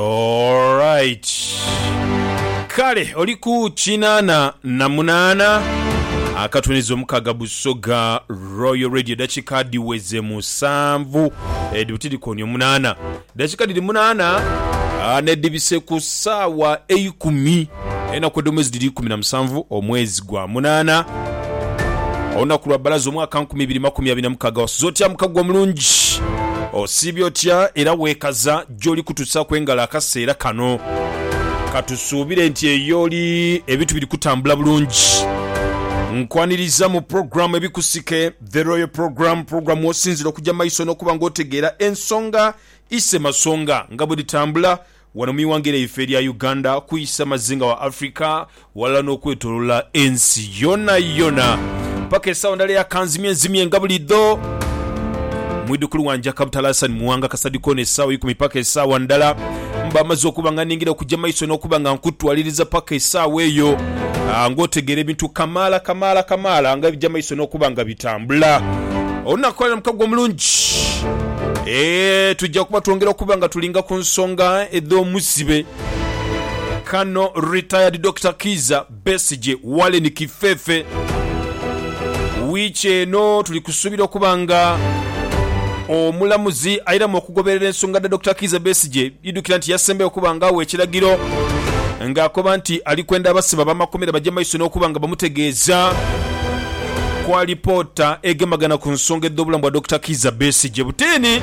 Alright kale oli ku kinaana na munaana akatuniza omukaaga Busoga Royal Radio dakika dhiweze musanvu edhibiti dhikoonye omunaana dakika dhiri munaana nedhibise ku saawa eikumi enaku edhomwezi dhiri ikumi na musanvu omwezi gwa munaana olunaku lwa balaza omwaka nkumi ibiri makumi abiri na mukaaga wasuze otya mukago omulungi osiibye otya era wekaza gy'oli kutusaaku engalo akaseera kano. Ka tusuubire nti eyo oli ebintu biri kutambula bulungi. Nkwaniriza mu pulogulaamu Ebikusike, The Royal Program, pulogulaamu w'osinziira okugya mu maiso n'okuba ng'otegeera ensonga isemasonga nga bwe dhitambula wano mu ighanga lyaife erya Uganda ku isamazinga wa Africa. Ghalala n'okwetolola ensi yonayona. Paka esawa ndala eya kanzimye nzimye nga bulidho. Mwidhukulu wanje akabutala Hassan Muwanga Kasadi kona esawa eikumi paka esawa ndala mba maze okuba nga ningira okuja maiso n'okuba nga nkutwaliriza paka esawa eyo nga otegeera ebintu kamaala kamaala kamaala nga ebija maiso n'okuba nga bitambula. Olunaku lwaleero mukago omulungi eeh tuja kuba twongera okuba nga tulinga ku nsonga edh'omuzibe. Kano Retired Dokita Kiiza Besigye Wallen Kifefe wiiki eno tuli kusuubira okuba nga omulamuzi airamu okugoberera ensonga dha Dokita Kiiza Besigye. Idhukira nti yasembayo okuba nga awa ekiragiro nga akoba nti ali kwenda abasibe abamakomera baje maiso n'okuba nga bamutegeeza ku alipoota egemagana ku nsonga edh'obulamu bwa Dokita Kiiza Besigye butini.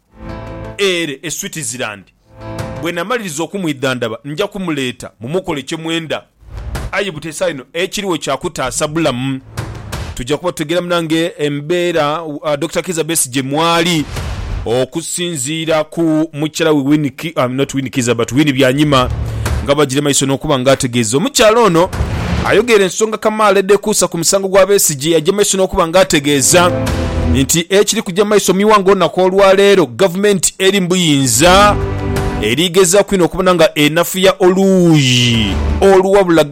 ere e Switzerland. Bwe namaliriza okumwidhandhaba nja kumuleeta mumukole kye mwenda. Aye butesaagho inho ekiriwo kya kutaasa bulamu. Tuja kuba tutegeeramu nange embeera Dokita Kiiza Besigye mwali okusinziira ku mukyala we Winnie, not Winnie Kiiza but Winnie Byanyima nga bagira emaiso n'okuba nga ategeeza. Omukyala ono ayogeera ensonga kamaala edhekuusa ku. musango gwa Besigye yaja mu maiso n'okuba nga ategeeza nti ekiri kuja mu maiso mu ighanga olunaku olwaleero gavumenti eri mu buyinza eri gezaaku inho okubona nga enafuya oluuyi oluwabula gavumenti